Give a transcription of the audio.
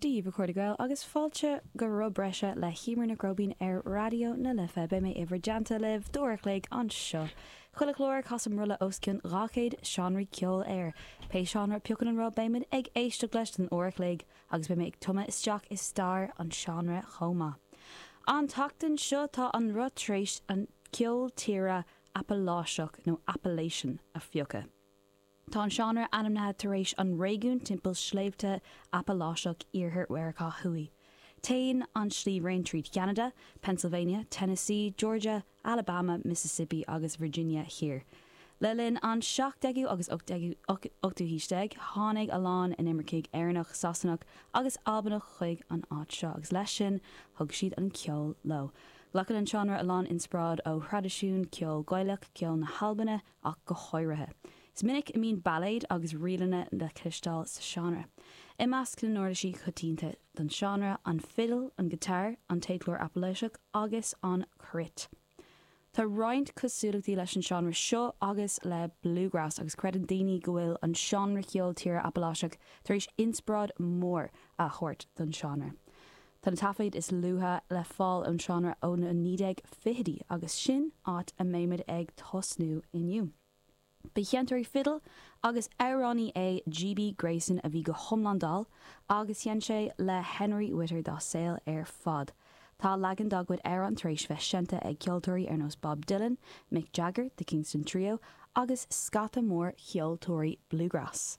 Dia dhaoibh a chairde Gael agus fáilte go roth breise le hEimear Nic Róibín ar Raidió na Life. Beidh mé i bhur dteannta libh d'uair a chloig anseo. Chuile chlár, casaim roth le os cionn 200 seánraí ceoil air. Pé seánra a piocann an roth beimid ag éisteacht leis don uair a chloig agus beidh mé ag tumadh isteach i stair an seánra chomh maith. An tseachtain seo tá an roth tar éis an ceol tíre Apaláiseach, nó Appalachian, a phiocadh. Tá an seánra ainmnithe tar éis an réigiún timpeall Sléibhte Apaláiseach Iarthar Mheiriceá Thuaidh. Téann an sliabhraon tríd Cheanada, Pennsylvania, Tennessee, Georgia, Alabama, Mississippi agus Virginia Thiar. Le linn an 17ú agus 18ú haois déag tháinig a lán inimircigh Éireannach, Sasanach agus Albanach chuig an áit seo agus leis sin thug siad an ceol leo. Glacann an seánra a lán inspioráid ó thraidisiún ceol Gaelach, ceol na hAlbaine, ach go háirithe. Is minic a mbíonn bailéid agus ríleanna le cloisteáil sa seánra. I measc na n-uirlisí coitianta don seánra, an fidil, an giotár, an téadchlár Apaláiseach agus an cruit. Tá roinnt cosúlachtaí leis an seánra seo agus le bluegrass agus creideann daoine go bhfuil an seánra ceoil tíre Apaláiseach tar éis inspioráid mhór a thabhairt don seánra Tá na taifid is luaithe le fáil ón seánra ó na 1920idí agus sin áit a mbeimid ag tosnú inniu. Ba sheinnteoirí fidil agus amhránaí é GB Grayson a bhí go hiomlán dall agus sheinn sé le Henry Whitter dá saol ar fad. Tá leagan dá gcuid amhrán tar éis bheith seinnte ag ceoltóirí ar nós Bob Dylan, Mick Jagger, The Kingston Trio agus scata mór cheoltóirí bluegrass.